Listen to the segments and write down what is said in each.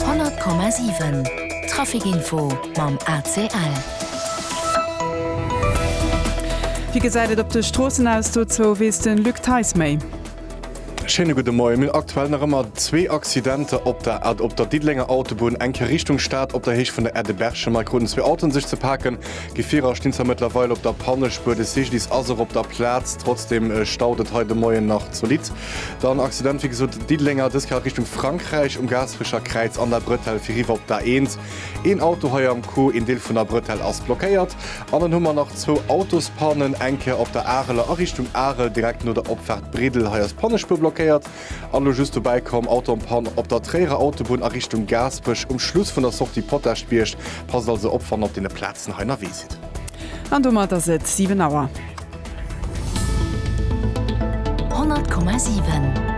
100,7 Trafic Info mam ACL. Wéi gesäit et op de Stroossen aus? Dozou weess de Luc Theis méi. Schéine gudde Moien. Mir hunn aktuell nach ëmmer zwee Accidenter op der A op der Diddelenger Autobunn, eng Kéier Richtung Stad op der Héicht vun der Erde Berchem. Hei kruten zwee Autoen sech ze paken. Gefierer stinn zwar mëttlerweil op der Pannespuer, de Cyclist ass och op der Plaz. Trotzdeem staut et hei de Moien nach zolidd. Dann Accident wéi gesot Diddelenger dës Kéier Richtung Frankräich um Gaasperecher Kräiz an der Bretelle fir riwwer op d'A1. Een Auto hei am Coup, een Deel vun der Bretelle ass blockéiert. An dann hu mer nach zwou Autospannen, eng Kéier op der Areler a Richtung Arel direkt no der Opfaart Briddel, hei ass d'Pannespuer blockéiert. An elo just dobäi komm, Auto en panne op der Tréierer Autobunn a Richtung Gaasperech um Schluss vun der Sortie Potaschbierg. Passt also op wann der op deene Plazen hei ënnerwee sidd. An domat ass et 7 Auer. 100,7.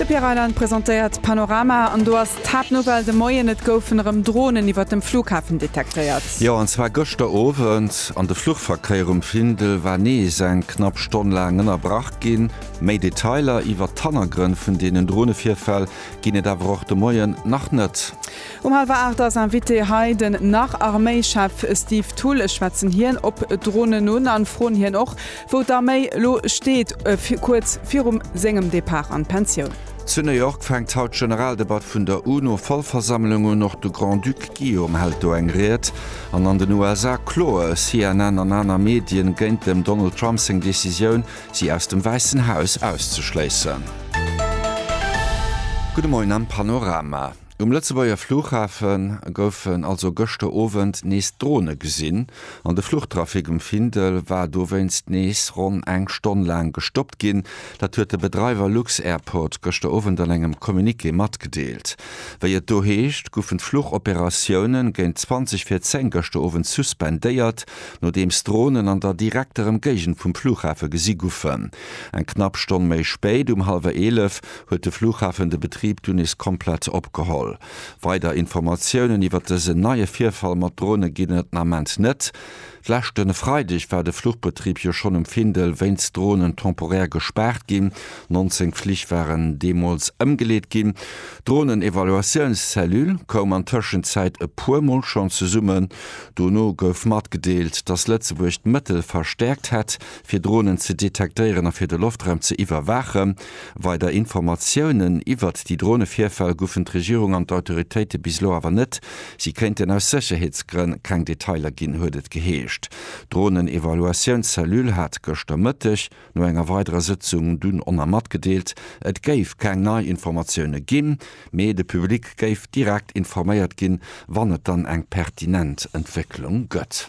De Pierre Reyland presentéiert d'Panorama an do ass d'Haaptnouvelle de Moien, Et goufen erëm Dronen iwwert dem Flughafen detektéiert. Jo, an zwar gëschter Owend. An de Fluchverkéier um Findel war nees eng knapp Stonn laang ënnerbrach ginn. Méi Detailer iwwert d'Hannergrënn vun deenen Dronevirfäll ginn et awer och de Moien nach net. Um halwer 8 ass Invité hei den Nach-Arméichef Steve Thull. Ech schwätzen hien op Dronen un an froen hien och, wou d'Arméi lo steet, kuerz virum sengem Depart an d'Pensioun. Zu New York fänkt haut d'Generaldebatt vun der UNO-Vollversammlung un. Och de Grand-Duc Guillaume hält do eng Ried. An an den USA kloe CNN an aner Medien géint dem Donald Trump seng Decisioun, si aus dem Wäissen Haus auszeschléissen. Gudde Moien am Panorama. Um Lëtzebuerger Flughafe goufen also gëschter Owend nees Drone gesinn an de Fluchtrafic um Findel war dowéinst nees ronn eng Stonn laang gestoppt ginn. Dat huet de Bedreiwer lux-Airport gëschter Owend an engem Communiqué matgedeelt. Wéi et do heescht, goufen d'Fluchoperatioune géint 20 vir 10 gëschter Owend suspendéiert, nodeems Dronen an der direkter Emgéigend vum Flughafe gesi goufen. Eng knapp Stonn méi spéit, um hallwer 11, huet de Flughafen de Betrib dunn nees komplett opgeholl. Weider Informatiounen iwwert dësen neie Virfall mat Drone ginn et den Ament net. D'leschte Freideg war de Fluchbetrib jo schonn um Findel wéinst Dronen temporär gespaart ginn. 19 Flich waren deemools ëmgeleet ginn. D'Dronen-Evaluatiouns-Cellule koum an Tëschenzäit e puer Mol schonn zesummen. Dono gouf matgedeelt, datt Lëtzebuerg d'Mëttel verstäerkt hätt, fir Dronen ze detektéieren a fir de Loftraum ze iwwerwaachen. Weider Informatiounen iwwert déi Dronevirfäll goufen d'Regierung an d'Autoritéite bis elo awer net. Si kéinten aus Sécherheetsgrënn keng Detailer ginn, huet et geheescht. D'Dronen-Evaluatiouns-Cellule hat gëschter Mëtteg no enger weiderer Sëtzung dunn ona matgedeelt, et géif keng nei Informatioune ginn, mee de Public géif direkt informéiert ginn, wann et dann eng pertinent Entwécklung gëtt.